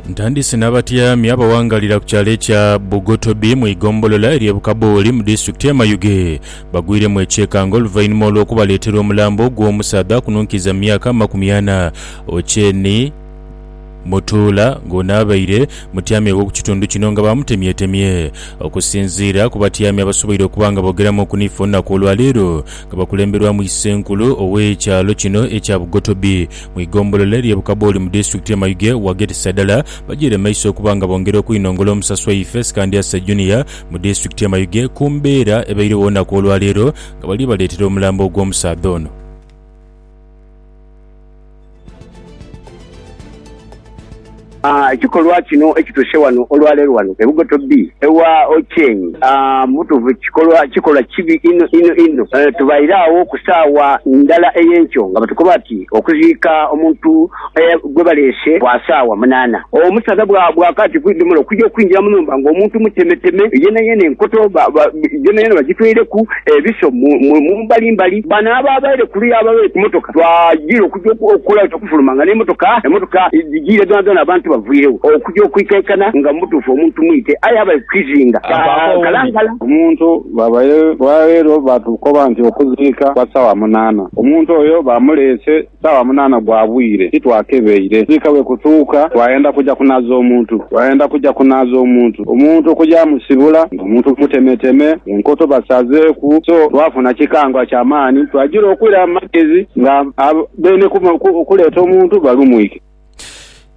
Ntandise n'abatyami abawangaalira ku kyalo ekya Bugotobi mu igombolola ery'e Bukabooli mu disitulikiti y'e Mayuge bagwiremu ekyekango oluvainhuma olw'okubaleetera omulambo gw'omusaadha akununkiiza mu myaka amakumi ana Ocean Mutuula ng'ono abaire mutyami w'oku kitundu kino nga baamutemyetemye. Okusinziira ku batyami abasoboire okuba nga boogeramuuku naife olunaku olwaleero nga bakulemberwamu Isenkulu ow'ekyalo kino ekya Bugotobi mu igombolola erye Bukaboli mu disitulikiti ye Mayuge waghetisa dala bajiire maiso okuba nga bongera okwinongola omusaso waife Sikandyasa Junior mu disitulikiti ye Mayuge ku mbeera ebairegho olunaku olwaleero nga bali baleetera omulambo gw'omusaadha ono. Ekikolwa kino ekituuse wano olwaleero wano e Bugoto B ewa Ochieng, mubutuufu kikolwa kikolwa kibi inho inho inho. Tubaire agho ku saawa ndala ey'enkyo nga batukoba ati okuziika omuntu gwebaleese kwa saawa munaana, omusaadha bwakaati ku idhomolo okuja okwingira mu nhumba nga omuntu mutemeteme yenayeena, enkoto yonayona bagitweireku, ebiso mu mbali mbali. Bano abaabaire kuluya ababaire ku motoka twajiira okuja okukola. Nfuluma nga n'emotoka emotoka dhijiire dhoonadhoona abantu bavwiregho okuja okwikaikana nga mu butuufu omuntu mwite aye abaire ku kizinga kya Kalangala. Omuntu bwabaire olwaleero baatukoba nti okuziika kwa saawa munaana. Omuntu oyo baamuleese saawa munaana gwa bwire titwakebeire. Kuziika bwe kutuuka twayenda kuja kunaaza omuntu. Twayenda kuja kunaaza omuntu, omuntu okugyamusibula nga omuntu mutemeteme, enkoto basazeeku. So twafuna kikangwa kya maani twagira okwiramu magezi nga Beene okuleeta omuntu balumwike.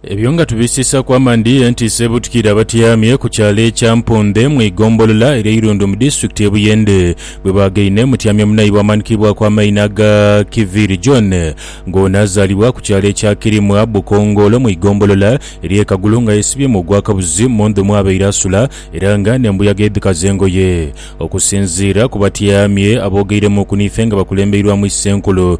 Ebyo nga tubisiisaku amandhi, entiisa ebutukire abatyamye ku kyalo ekya Mpuundhe mu igombolola erya Irundu mu disitulikiti ye Buyende bwe baagaine mutyamya munaibwe amanikibwaku amaina aga Kiviiri John nga ono azaalibwa ku kyalo ekya Kirimwa Bukongoolo mu igombolola erye Kagulu nga yesibyemu ogwakabuzi mu ndhu mwabaire asula era nga n'embuyaga edhikaza engoye. Okusinziira ku batyamye abogeiremuku n'ife nga bakulembeirwamu Issenkulu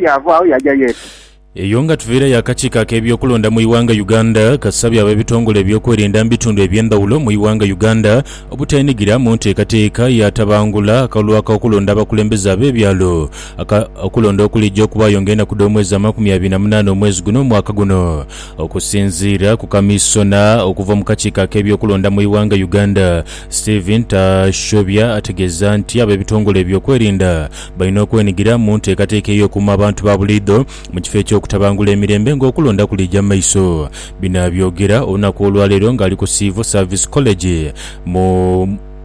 Yaava agho yaaja Yesu. Eyo nga tuviirayo akakiiko ak'ebyokulonda mu ighanga Uganda kasabye abebitongole ebyokwerinda mu bitundu ebyendhawulo mu ighanga Uganda obuteenhigira mu nteekateeka yatabangula akalulu ak'okulonda abakulembeze abebyalo aka okulonda okulija okubaayo nga enaku dh'omwezi amakumi abiri na munaana omwezi guno omwaka guno okusinziira ku kamisona okuva mu kakiiko ak'ebyokulonda mu ighanga Uganda Steven Tashobya ategeeza nti abebitongole ebyokwerinda Balina okwenigira mu nteekateeka ey'okuuma abantu ba buliidho mu kifo eky'okutabangula emirembe ng'okulonda kuliija mu maiso. Bino abyogera olunaku olwaleero ng'ali ku Civil Service College mu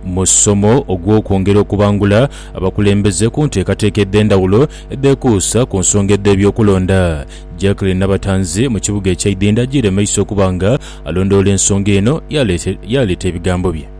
musomo ogw'okwongera okubangula abakulembeze ku nteekateeka edh'endhawulo edhekuusa ku nsonga edh'ebyokulonda. Jacqueline Nabatanzi mu kibuga ekya Idhindho ajiire maiso okuba nga alondoola ensonga eno yaleeta ebigambo bye.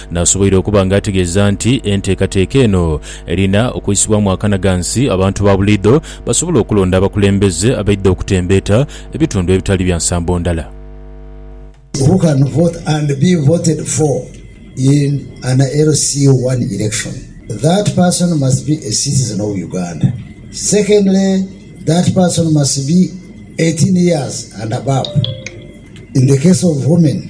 Nasoboire okuba nga ategeeza nti enteekateeka eno erina okwisibwamu akanaghansi abantu ba buliidho basobole okulonda abakulembeze abaidha okutembeeta ebitundu ebitali bya nsambo ndala. Who can vote and be voted for in an LC one election? That person must be a citizen of Uganda. Secondly, that person must be eighteen years and above in the case of women.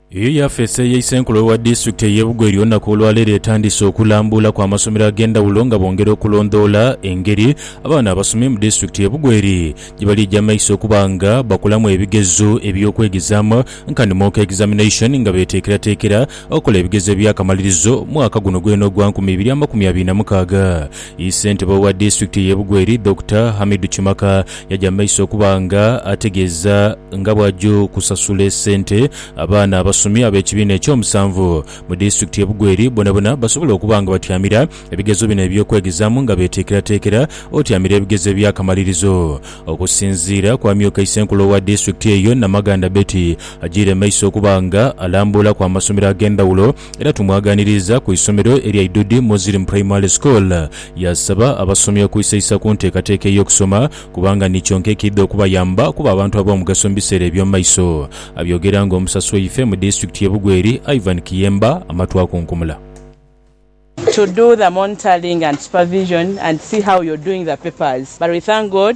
Eyo y'afeesi eye Isenkulu owa Disitulikiti eye Bugweri olunaku olwaleero etandise okulambuula ku amasomero ag'endhawulo nga bongera okulondoola engeri abaana abasomye mu Disitulikiti ye Bugweri gyebalija maiso okuba nga bakolamu ebigezo eby'okwegezaamu nkani Mock Examination nga beteekerateekera okola ebigezo ebyakamalirizo mwaka guno gwena ogwa nkumi ibiri amakumi abiri na mukaaga. Isentebe owa Disitulikiti eye Bugweri Dokita Hamidu Kimaka Yaja mu maiso okuba nga ategeeza nga bw'aja okusasula esente abaana abasomi ab'ekibiina eky'omusanvu mu disitulikiti y'e Bugweri bonabona basobole okuba nga batyamira ebigezo bino eby'okwegezaamu nga beeteekerateekera otyamira ebigezo eby'akamalirizo. Okusinziira ku amyuka Isenkulu owa disitulikiti eyo, Namaganda Betty, ajiire mu maiso okuba nga alambuulaku amasomero ag'endhawulo era tumwagaaniriiza ku isomero erya Idudi Muslim Primary School Yaasaba abasomi okwisaisa ku nteekateeka ey'okusoma kubanga ni kyonka ekiidha okubayamba okuba abantu ab'omugaso mu biseera eby'omu maiso. Abyogera ng'omusasi waife mu disitulikiti y'e Bugweri, Ivan Kiyemba amatu akunkumula. to do the monitoring and supervision and see how you're doing the papers but we thank God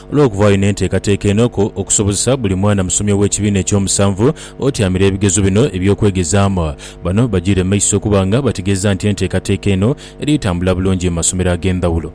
Olw'okubaayo n'enteekateeka enoku okusobozesa buli mwana musomi ow'ekibiina eky'omusanvu otyamira ebigezo bino eby'okwegezaamu, bano bajiire mu maiso okuba nga bategeeza nti enteekateeka eno eri tambula bulungi mu masomero ag'endhawulo.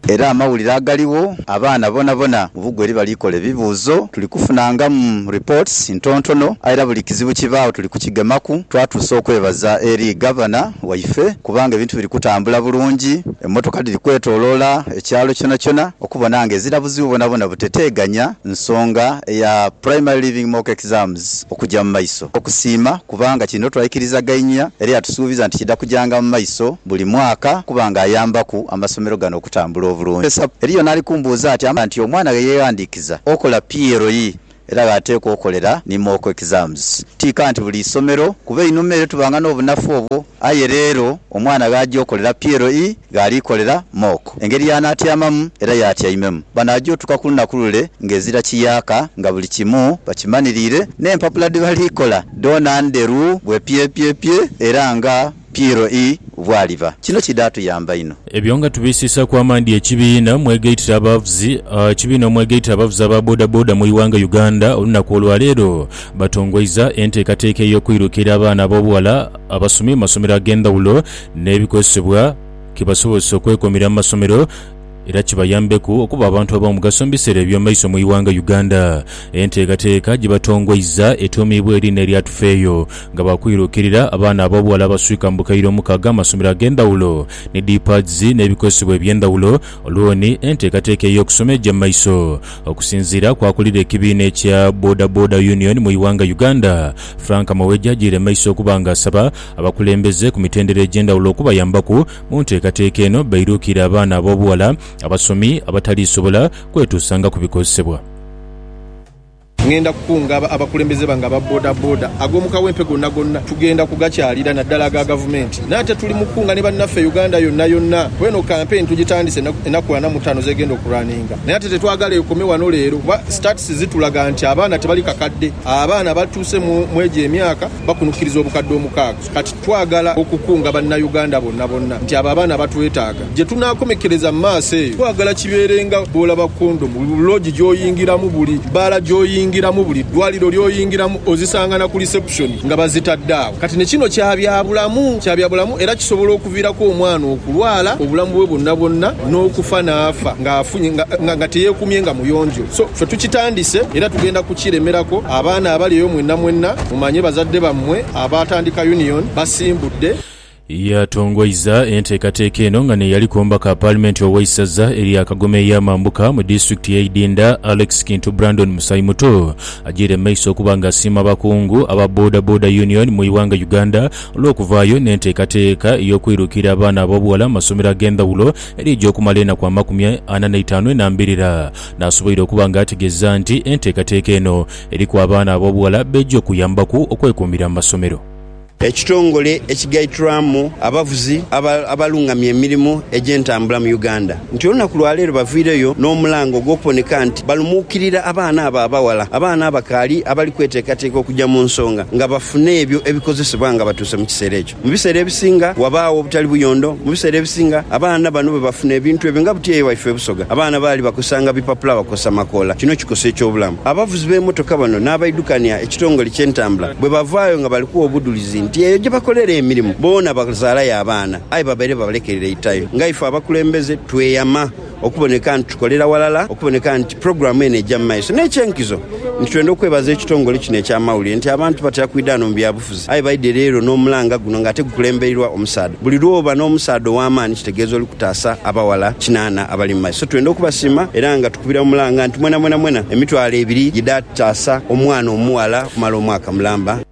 Era amawulire agaligho, abaana bonabona mu bugwa eri bali kola ebibuuzo, tuli kufunangamu reports ntontono, aye era buli kizibu kibaagho tuli kukigemaku, twatuusa okwebaza eri Gavana, waife kubanga ebintu biri kutambula bulungi, emmotoka dhiri kwetoloola ekyalo kyonakyona okubona nga ezira buzibu bwonabwona buteteeganya nsonga eya Primary Leaving Mock Exams okugya mu maiso. Okusiima kubanga kino twaikirizaganhia era yatusuubiza nti kidha kujanga mu maiso buli mwaka okuba nga ayambaku amasomero gano okutambula obulungi. Eriyo n'ali kumbuuza ati, Amanya nti omwana ghe yeeghandiikiza okola PLE? Era gh'ateekwa okolera ni mock exams. Ti kanti buli isomero, kuba einhuma ere tubanga n'obunafu obwo, aye leero omwana gh'aja okolera PLE gh'ali kolera mock. Engeri y'anaatyamamu era y'atyaimemu. Bano aja otuuka ku lunaku lule ng'ezira kiyaaka nga buli kimu bakimaniriire, n'empapula dhe bali kola dhoona ndheru bwepyepyepye era nga. Piero ii bw'aliba. Kino kidhatuyamba inho. Ebyo nga tubiisiisaaku amaadhi ekibiina mwegaitira abavuzi Ekibiina omwegaitira abavuzi aba bodaboda mu ighanga Uganda olunaku olwaleero batongoiza enteekateeka ey'okuirukiira abaana ab'obughala abasomye mu masomero ag'endhawulo n'ebikozesebwa kibasobozese okwekumira mu masomero era kibayambeku okuba abantu ab'omugaso mu biseera eby'omaiso mu ighanga Uganda. Enteekateeka gye batongoiza etuumiibwa eriina erya Tufeeyo nga baakwirukirira abaana ab'obughala abaswika mu bukaire omukaaga amasomero ag'endhawulo ni D-pads n'ebikozesebwa eby'endhawulo olwoni enteekateeka ey'okusoma egya mu maiso. Okusinziira ku akulira ekibiina ekya Boda Boda Union mu ighanga Uganda, Frank Mawejje agiire mu maiso okuba nga asaba abakulembeze ku mitendera egy'endhawulo okubayambaku Mu nteekateeka eno bairuukira abaana ab'obughala abasomi abataliisobola kwetuusanga ku bikozesebwa. Ngenda kukunga abakulembeze bange aba bodaboda ag'omu kawempe gonna gonna. Tugenda kugakyalira naddala aga Gavumenti. Nate tuli mu kukunga ni bannaffe Uganda yonna yonna kuba eno kampeyini tugitandise enaku ana mu taano z'egenda okulunninga. Naye ate tetwagala ekome wano leero kuba stats zitulaga nti abaana tebali kakadde. Abaana abatuuse mw'egyo emyaka bakunukkiriza obukadde omukaaga. Kati twagala okukunga Bannayuganda bonna bonna nti abo abaana batwetaaga. Gye tunaakomekereza mu maaso eyo twagala kibeere nga bw'olaba kondomu buli loogi gy'oyingiramu, buli bbaala gy'oyingiramu, buli ddwaaliro ly'oyingiramu ozisanga na ku lisepusoni nga bazitadde agho. Kati ne kino kya byabulamu, kya byabulamu era kisobola okuviiraku omwana okulwala obulamu bwe bwonna bwonna n'okufa n'afa ng'afunye nga nga teyeekumye nga muyonjo. So ffe tukitandise era tugenda kukiremerako. Abaana abali eyo mwenna mwenna mumanye bazadde bammwe. Abaatandika Union basimbudde. Yatongoiza enteekateeka eno nga n'eyaliku omubaka wa paalimenti ow'eisaza erya Kagoma ey'amambuka mu disitulikiti y'e Idinda, Alex Kintu Brandon Musaimuto agyaire mu maiso okuba nga asiima abakungu aba Boda Boda Union mu ighanga Uganda olw'okuvaayo n'enteekateeka ey'okwirukiira abaana ab'obughala mu masomero ag'endhawulo eri egy'okumala enaku amakumi ana n'eitaanu enambirira n'asoboire okuba nga ategeeza nti enteekateeka eno eriku abaana ab'obughala beeja okuyambaku okwekuumira mu masomero. Ekitongole ekigaitirwamu abavuzi abalungamya emirimu egy'entambula mu Uganda nti olunaku lwaleero bavaireyo n'omulanga ogw'okuboneka nti balumuukirira abaana abo abaghala, abaana abakaali abali kweteekateeka okugya mu nsonga nga bafune ebyo ebikozesebwa nga batuuse mu kiseera ekyo. Mu biseera ebisinga wabaagho obutali buyondo. Mu biseera ebisinga abaana bano bwe bafuna ebintu ebyo, nga buti eyo waife e Busoga abaana baali bakozesanga bipapula, bakozesa makoola, kino kikosa eky'obulamu. Abavuzi b'emotoka bano n'abaidhukania ekitongole ky'entambula bwe bavaayo nga bali kuwa obudhulizi nti eyo gye bakolera emirimu boona bazaalayo abaana aye babaire babalekereire itayo, nga ife abakulembeze tweyama. Okuboneka nti tukolera walala okuboneka nti pulogulaamu eno eija mu maiso n'eky'enkizo nti twenda okwebaza ekitongole kino eky'amawulire nti abantu batera kwidha ghano mu byabufuzi aye baidhe leero n'omulanga guno ng'ate gukulembeirwa omusaadha. Buli lw'oba n'omusaadha ow'amaani kitegeeza oli kutaasa abaghala kinaana abali mu maiso. So twenda okubasiima era nga tukubira mu mulanga nti mwenamwena mwena emitwalo ebiri gidha taasa omwana omughala okumala omwaka mulamba.